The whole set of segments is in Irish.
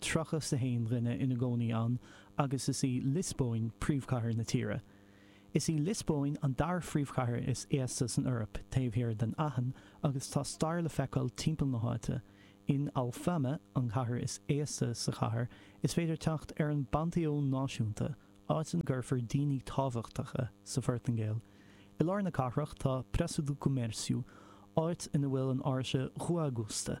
31 dhuine ina gcónaí ann agus is í Liospóin príomhchathair na tíre. Is í Liospóin an dara phríomhchathair is aosta san Eoraip, taobh thiar den Aithin, agus tá stair le feiceáil timpeall na háite. In Alfama, an chathair is aosta sa chathair, is féidir teacht ar an bPanteón Náisiúnta, áit ina gcuirtear daoine tábhachtacha sa Phortaingéil. I lár na cathrach tá Praça do Comércio, áit ina bhfuil an áirse Rua Augusta.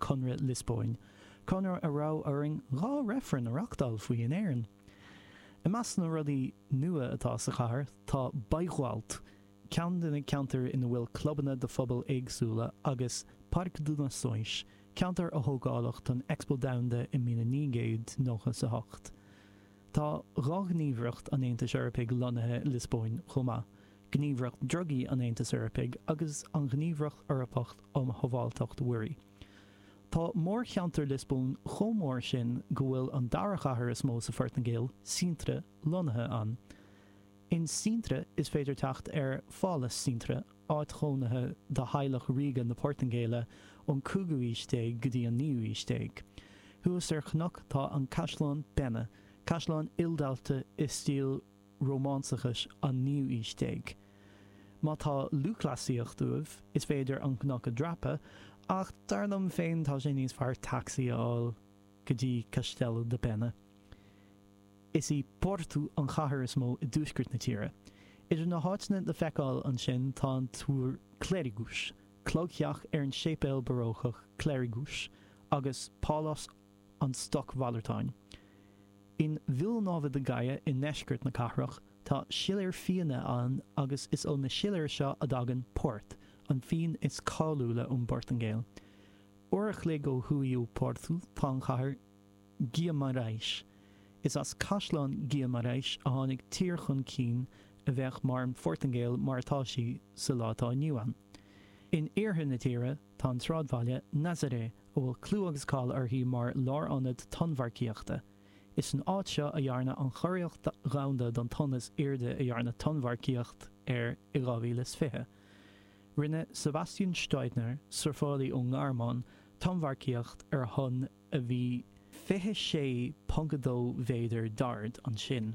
Conradh Liospóin, conradh a raibh orainn dhá reifreann a reachtáil faoi in Éirinn. I measc na rudaí nua atá sa chathair tá Bairro Alto, ceann de na ceantair ina bhfuil clubanna do phobail éagsúla, agus Parque das Nações, ceantar a tógáladh don Expo Domhanda i míle naoi gcéad nócha 's a hocht. Tá dhá ghníomhaireacht an Aontais Eorpaigh lonnaithe i Liospóin chomh maith. Gníomhaireacht Drugaí an Aontais Eorpaigh agus an Ghníomhaireacht Eorpach um Shábháilteacht Mhuirí. Tá mórcheantar Liospóin chomh mór sin go bhfuil an dara chathair is mó sa Phortaingéil, Sintra, lonnaithe ann. In Sintra is féidir teacht ar Phálas Sintra, áit chónaithe do theaghlach ríoga na Portaingéile ón 5ú aois déag go dtí an 9ú aois déag. Thuas ar chnoc tá an Caisleán Pena, caisleán ildaite i stíl rómánsachais an naoú aois déag. Má tá lúthchleasaíocht uaibh, is féidir an cnoc a dhreapadh, ach dar liom féin tá sé níos fearr tacsaí a fháil go dtí Castelo da Pena. Is í Porto an chathair is mó i dtuaisceart na tíre. Idir na háiteanna le feiceáil ansin tá an Túr Clérigos, clogtheach ar an séipéal Barócach Clérigos, agus Pálás an stocmhalartáin. In Vila Nova de Gaia i ndeisceart na cathrach, tá siléir fíona ann agus is ó na siléir seo a dtagann Port, an fíon is cáiliúla ón bPortaingéil. Uair a chloig ó thuaidh ó Porto tá an chathair Guimarães. Is as Caisleán Guimarães a tháinig tír chun cinn a bheadh mar an Phortaingéil mar atá sí sa lá atá inniu ann. In iarthar na tíre, Tá an sráidbhaile Nazaré, a bhfuil clú agus cáil uirthi mar lárionad tonnmharcaíochta, is san áit seo a dhearnadh an churiarracht dhomhanda don tonn is airde a dhearnadh tonnmharcaíocht air i 2020. Rinne Sebastian Steudtner, surfálaí ón nGearmáin, tonnmharcaíocht ar thonn a bhí 26.2 mhéadar d'ard ansin.